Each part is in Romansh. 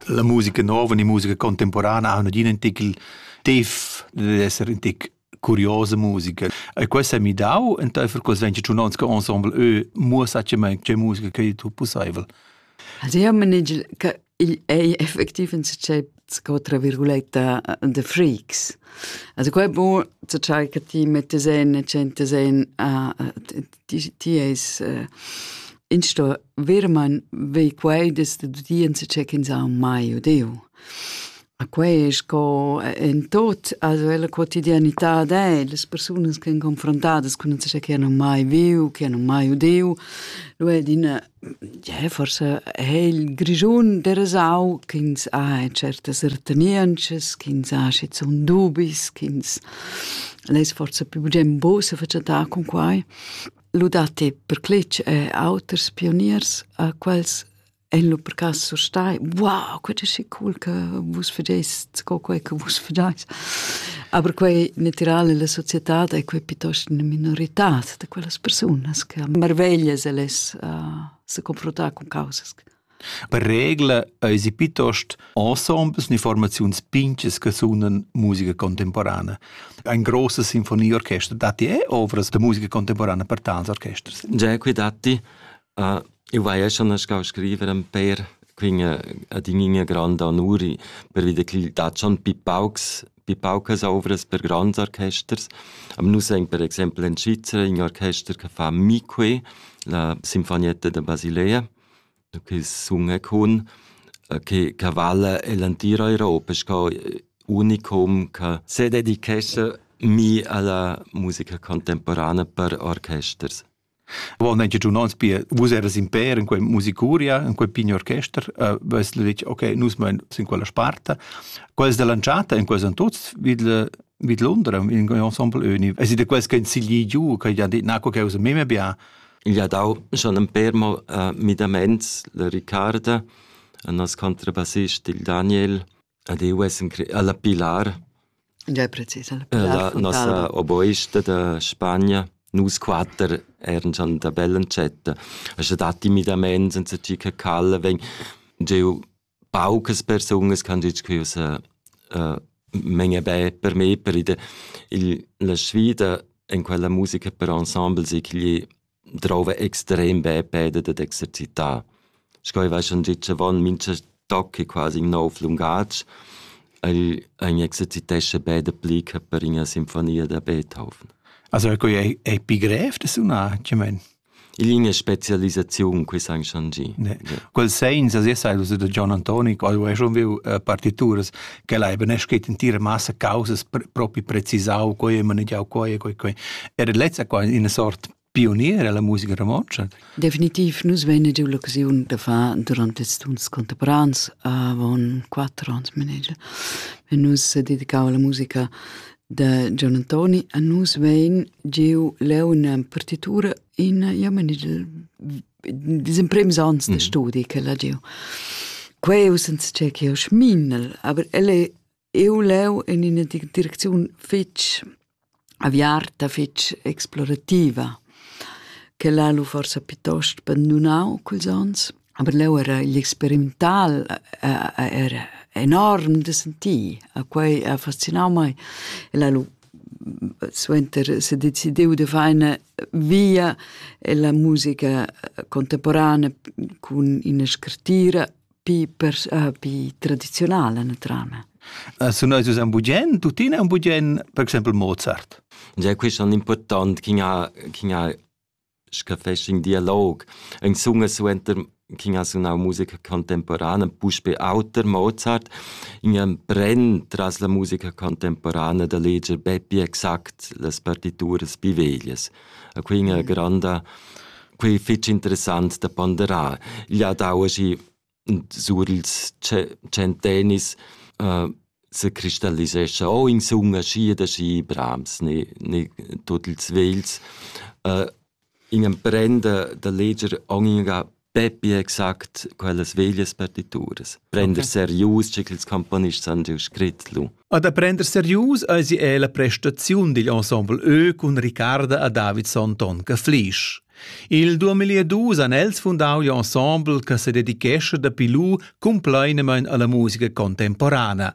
La musica nova ni musica contemporana ha nagin in tic tif dad esser in tic curiosa musica. E quest ha mi dau enteifer quels 22 onns che ensemble eu muossatgamain che musica che tu pussaivel. Also io manegel che igl ei effectiv in tschei sco tra virguletta de freaks also quei bu zu tschai che ti mettes en e centes en a ti ti es in sto virman vei quei des de udienza che kin sa mai odeu a quei es co en tot also la quotidianità de le persunas che confrontadas con ce che hanno mai viu che hanno mai udeu lu è din Ie, forsa ha il Grischun derasau ch'ins ha certas ertenientschas, ch'ins ha schizun dubis, ch'ins less forsa pli bugen buca sefatschentar cun quai. Lu datti per cletg er auters pioniers a quels ein lu per cass surstai: «Wow, quei è schi cool che vus fagest sco quei che vus fagais». Aber quei natira ella societad ei quei piuttost ina minoritad. da quellas persunas che marveglias el es uh, se confrontar con causas. Per regla eisi piuttost ensembles informaziuns pinches che sunan musica contemporanea. Ein grosse sinfonieorchester datti eh, ovras da musica contemporanea per tals orchesters? Già qui datti Ah, eu vaia schon nascau a scriver ün pêr, quin adin'igna granda onuri pervi da chi dat schon pi paucs pi paucas ouvras per grands orchesters. Am nus aint per exaimpel in Svizra ün orchester che fa Mi-que, la Sinfonietta da Basilea, che sunga cun, che che vala el entir Europa sco unicum che sededichescha mi a la musica contemporana per orchesters. Wo negia giu nons pia, vus eras in per in quei musicuria, in quei pign orchester, uh, vess detg, ok, nus mein sin quella sparta. Quels dell'anchata in quels an tuts vid vid Londra in ensemble uni. Es de quels che in sigli giu, che ja dit na co che us meme bia. Il ha dau schon un per mo uh, midaments le Riccarda, un as contrabassist il Daniel, Ed eu ves in cre alla Pilar. Già precis alla Pilar. La nossa oboista da Spagna. Nus quatter eran già da bella entschetta. E scha dat timidament senza chi che calla vegn gieu paucas persunas ch'han dit che esa uh, menge be per me per ide il, la sfida en quella musica per ensemble si che gli drouva extrem bè peda dad exercitar. Sco ei vai schon gitg avon mincha toc è quasi in nov lungatg. El, ein exercitescha bè dapli che per ina sinfonia da Beethoven. Also ecco è, è pi grev da sunar, che men? In linea specialisaziun qui san schon gi. Ne. Quel segns as essa illuso da John Antoni, qual è schon viu uh, partituras quella ei beneschet entira massa causas propi precisau quei e manegiau quei e quei quei era lezza qua ina sort pionier alla musica romontscha definitiv nus vein giu l'occasiun da far durante ils tuns contemporans avon quattro ans manager e nus dedicau alla musica de Gian Antoni a nus vein giu leu una partitura in ja manigel Dis imprims ans de mm. studi che l'ha giu. Queu senza che ch'eu schminel, aber el è eu leu in ina direcziun fitch aviarta, fitch explorativa, che l'ha lu forsa piuttosto bandunau culs ans, aber leu era l'experimental era enorm de sentir, a quei ha fascinau mai. E l'ha lu suenter se decidiu de far una via ella musica contemporana cun ina scrittira pi, per, uh, pi tradizionala naturalmente. Uh, su noi usan bugen, tuttina un bugen, per exempel Mozart. Ja, questo è importante, chi ha, chi ha scha fest ün dialog. Ün sunga suenter ch'in ha sunau musica contemporana, puspe auter Mozart, ün pren tras la musica contemporana da leger be pli exact las partituras pi veglias. E quei ina granda, quei fetg interessant da ponderar. Igl ha dau aschi sur ils tschentennis uh, se cristallisescha o insumma schi da schi brams ne, ne tot ils vels. Uh, in emprenda da leger ogni Peppi exact quellas veglias partituras. Prender okay. serius, che ils componists han giu scrit lu. A da prender serius eisi è la prestaziun digl ensemble Ö cun Ricarda a David Sonton che Flisch. Il 2002 han els fundau l'ensemble che se dedichesce dapi lu compleinemein alla musica contemporana.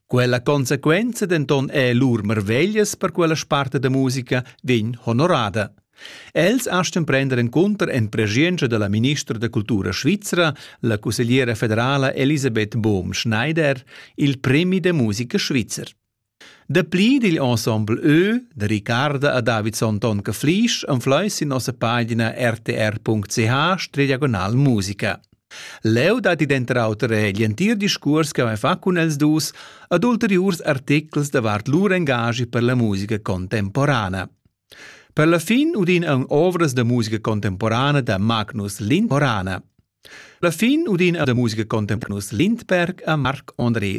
Quella conseguenza denton è lur marveglias per quella sparte da musica vegn honorada. Els astgan prender encunter en preschientscha dalla ministra da cultura svizra, la cussegliera federala Elisabeth Bohm-Schneider, il premi da musica svizzer. Dapli digl ensemble Ö da Ricarda a Davidson Tonka Flisch anfleis sin nossa pagina rtr.ch diagonal musica. Leu dat id enter auter egl entir discurs che vai fa cun els dus ad ulteriurs articles davart lur engagi per la musica contemporana. Per la fin udin aunc ovras da musica contemporana da Magnus Lindborana. La fin udin da musica contemporanus Lindberg a Marc André